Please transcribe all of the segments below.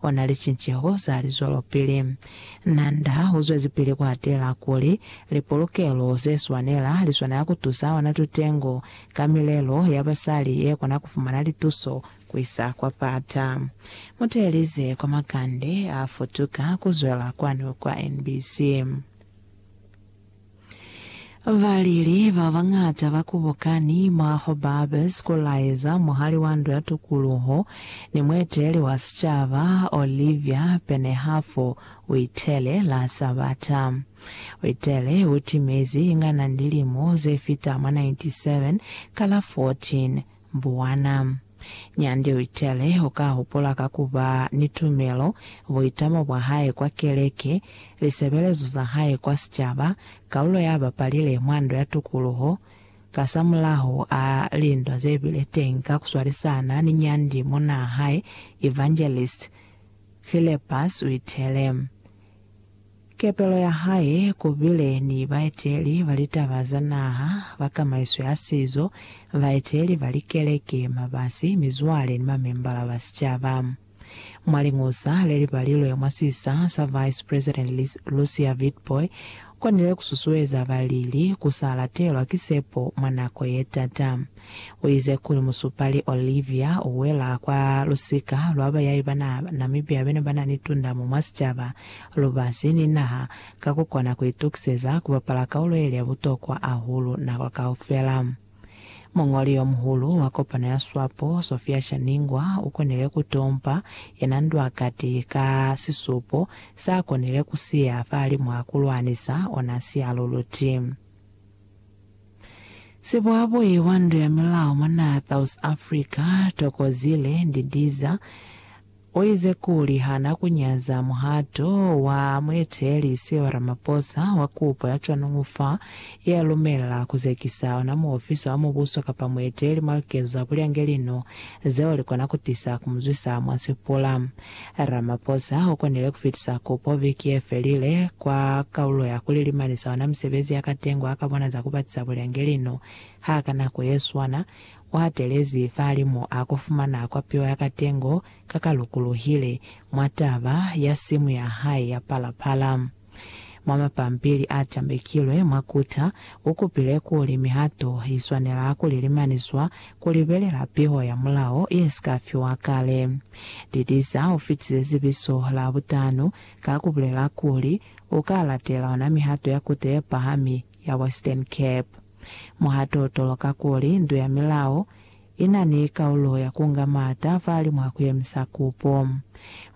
Ona licinceho za lizwelopili. Na nda u zwezipili ku atela kuli, lipolokelo ze swanela li swanela ku tusa ona tutengo ka milelo ya basali ye kona ku fumana lituso ku isa kwa pata. Mu teelize kwa makande a futuka ku zwela kwanu kwa NBC. Baleli ba bañata ba kubokani mwa Hobabs ku laeza muhali wa Ndu ya Tukuluho ni mueteli wa sicaba, Olivia Penehafu, u itele, La Sabata. U itele, U timezi inga na ni lilimo ze fita mwa 97 ka la 14 Mbuwana. Nyandi uitele, Uka hupula ka kuba ni tumelo, buitamo bwa hae kwa keleke, lisebelezo za hae kwa sicaba, kaulo ya bapalile mwa Ndo ya Tukuluho. Kasamulaho a lindwa zebile teñi ka kuswalisana ni nyandi monaa hae, Evangelist Phillepus uitele, Kepelo ya hae ku bile ni baeteli ba litaba za naha, ba kamaiso ya sizo, baeteli ba likeleke, mabasi, mizwale ni mamembala ba sicaba. Mwa liñusa le li balilwe mwa sisa sa Vice President Lucia Witbooi, u konile ku susueza balili ku sa latelwa ki sepo mwa nako ye t'ata. Uize kuli musupali Olivia uwela kwa lusika lwa bayai ba Namibia bene banani tundamo mwa sicaba, lubasi, ni naha, ka kukona kuitukiseza kubapala kaulo yeli ya butokwa ahulu nako kaufela. Muñoli yomuhulu wa kopano ya Swapo, Sophia Shaningwa, ukonile kutompa yena ndwa kati ka sisupo saakonile kusiya fahalimu hakulwanisa ona sialuluti. Sibwabwi wa ndu ya milao mwa naha ya South Africa, Thokozile Ndidiza, uize kuli hana kunyaza muhato wa mueteleli Cyril Ramaphosa wa kupo ya cwanuñu fa ya lumela kuzekisa ona muofisa wa mubuso kapa mueteleli mwa likezo za bulyangelino zeo likona kutisa kumuzwisa mwa sipula. Ramaphosa u konile ku fitisa kupo viki ye felile kwa kaulo ya ku lilimanisa ona misebezi ya katengo a ka bona za ku batisa bulengeli no ha ka nako ye swana u hatelezi fahalimu a ku fumana kwapiwa ya katengo ka ka lukuluhile mwa taba ya simu ya hae ya Phala Phala. Mwa mapampili a tambekilwe mwa kuta, u kupile kuli mihato i swanela ku lilimaniswa ku libelela piho ya mulao ye si ka fiwa kale. Didiza u fitile zibiso la butano ka ku bulela kuli u ka latela ona mihato ya Kuta ye Pahami ya Western Cape. Muhato u toloka kuli ndu ya milao i na ni kaulo ya ku nga maata fahalimu ha ku yemisa kupo.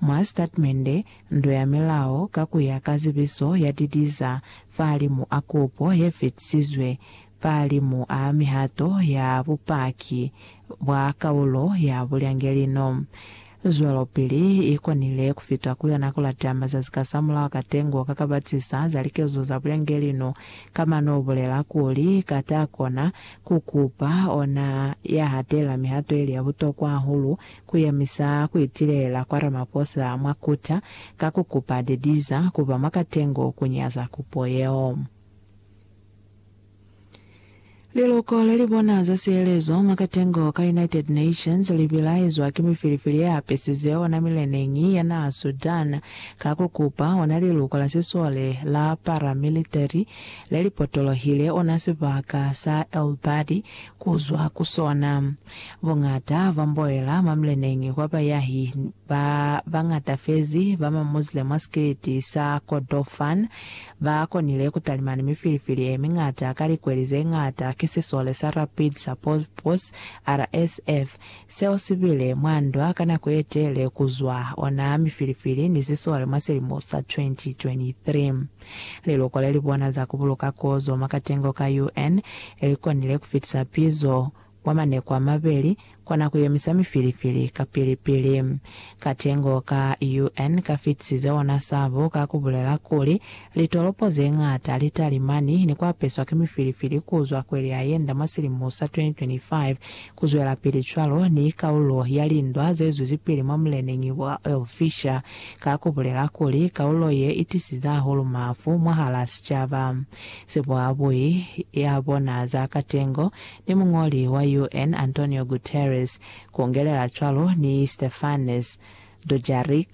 Mwa sitatimende, Nto ya Milao ka ku ya ka Zibiso ya Didiza fahalimu a kupo ye fitisizwe fahalimu a mihato ya bupaki bwa kaulo ya bulyangelino. zwelopili i konile ku fita ku yona ku lata mazazi kasamulaho ka tengo ka ka batisa za likezo za bulangeli no ka mano u bulela kuli, Ka ta kona ku kupa ona ya hatela mihato ili ya butokwa hahulu ku yemisa ku itilela kwa Ramaphosa mwa Kuta ka ku kupa Dediza ku ba mwa katengo ku nyaza kupo yeo. Liloko lelibona za sihelezo mwa katengo ka United Nations libilaezwa ki mifilifili yeapesize ona mileneñi ya naha Sudan ka kukupa ona liluko la sisole la paramilitary lelipotolohile ona sibaka sa El Badi kuzwa ku sona. Bongata ba mboela mwa mileneñi kwa bayahi ba bañata fezi ba ma Muslim mwa sikiliti sa Kordofan Ba konile ku talima ni mifilifili ye miñata ka likweli ze ñata ki sisole sa Rapid Support Force, RSF, seo si bile mwa ndwa ka nako ye tele ku zwa ona mifilifili ni sisole mwa silimo sa 2023. Liloko le li bona za ku buluka kozo mwa katengo ka UN li konile ku fitisa pizo mwa maneko a mabeli kona ku yemisa mifilifili ka pili-pili. Katengo ka UN ka fitisize ona sabo ka ku bulela kuli, Litolopo ze ñata li talimani ni ku apeswa ki mifilifili ku zwa kweli ya yenda mwa silimo sa 2025, ku zwelapili cwalo ni kaulo ya lindwa ze zwezipili mwa muleneñi wa Oil Fisher ka ku bulela kuli, Kaulo ye i tisize hahulu mafu mwahal'a sicaba. Sibuhabui ya bona za katengo ni muñoli wa UN Antonio Guterres, kungelela cwalo ni Stefanes Dujarric,